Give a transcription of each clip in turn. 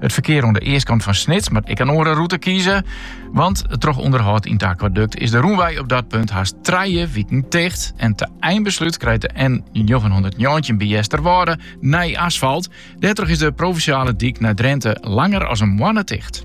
It ferkear oan de eastkant fan Snits moat ek in oare rûte kieze. Want troch ûnderhâld yn it akwadukt is de rûnwei op dat punt hast trije wiken ticht. En te einbeslút krijt de N919 by Easterwâlde nij asfalt. Dêrtroch is de provinsjale dyk nei Drinte langer as in moanne ticht.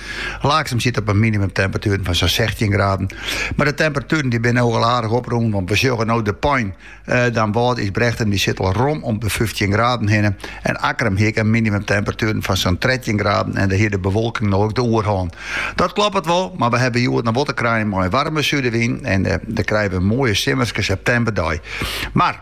Laaksum siet op in minimumtemperatuer fan sa'n sechstjin graden. Mar de temperatueren dy binne no al aardich oprûn, want we sjogge no De Pein, eh, Damwâld, Ysbrechtum dy sitte al rom om de fyftjin graden hinne. En Akkrum hie ek in minimumtemperatuer fan sa'n trettjin graden en dêr hie de bewolking no ek de oerhân. Dat kloppet wol, mar we hawwe hjoed noch wol te krijen mei in waarme sudewyn en eh, dêr krije we in moaie simmerske septemberdei. Mar.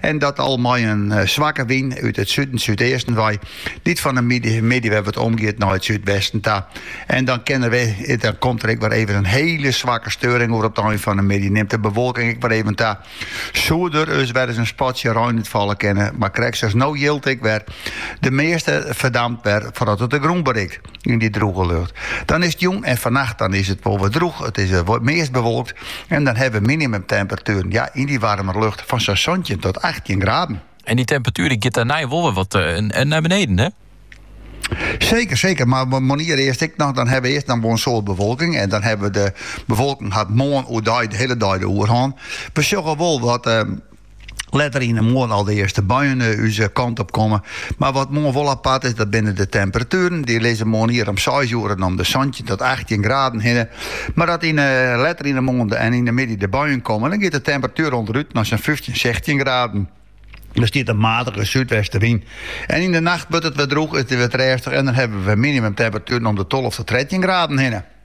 En dat al mei in eh, swakke wyn út it suden súdeasten wei, dy't fan de middei wer wat omgiet nei it súdwesten ta. En dan kinne we, dan komt der ek wer even in hiele swakke steuring oer op de ein fan de middei. Nimt de bewolking ek wer even ta. Soe der dus wer ris in spatsje rein út falle kinne, mar krekt sa as no jildt ek wer de measte ferdampt wer foardat it de grûn berikt. yn dy drûge lucht. Dan is it jûn en fannacht dan is it wol wer drûch. It is eh, meast bewolkt en dan hawwe we minimumtemperatueren ja, yn dy warme lucht fan sa'n santjin tot 18 graden. En dy temperatuer dy giet dêrnei wol wer wat eh, nei beneden, hè? Seker, seker. Mar moarnier earst ek noch, dan hawwe we earst noch in soad bewolking. En dan hawwe we, de bewolking hat moarn oer de hiele dei de oerhân. We sjogge wel wat. Ehm, Letter yn de moarn al de earste buien eh, ús eh, kant op komme. Mar wat moarn wol apart is, dat binne de temperatueren. Dy lizze moarnier om 6 oere om de 17 tot 18 graden hinne. Mar dat yn, eh, letter yn de moarn en yn de middei de buien komme, dan giet de temperatuer ûnderút nei sa'n 15, 16 graden. Dan stiet der in matige súdwestewyn. En yn de nacht wurdt it wer drûch, is it wer rêstich en dan hawwe we minimumtemperatueren om de 12 tot 13 graden hinne.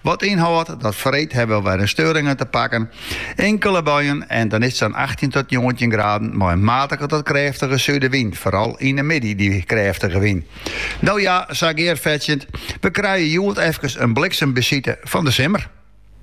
Wat ynhâldt, dat freed hawwe we wer in steuring te pakken. Inkele buien en dan is it sa'n achttjin tot njoggentjin graden mei in matige tot krêftige sudewyn, foaral yn 'e middei dy krêftige wyn. No ja, sa gearfetsjend, we krije hjoed efkes in bliksembesite fan de simmer.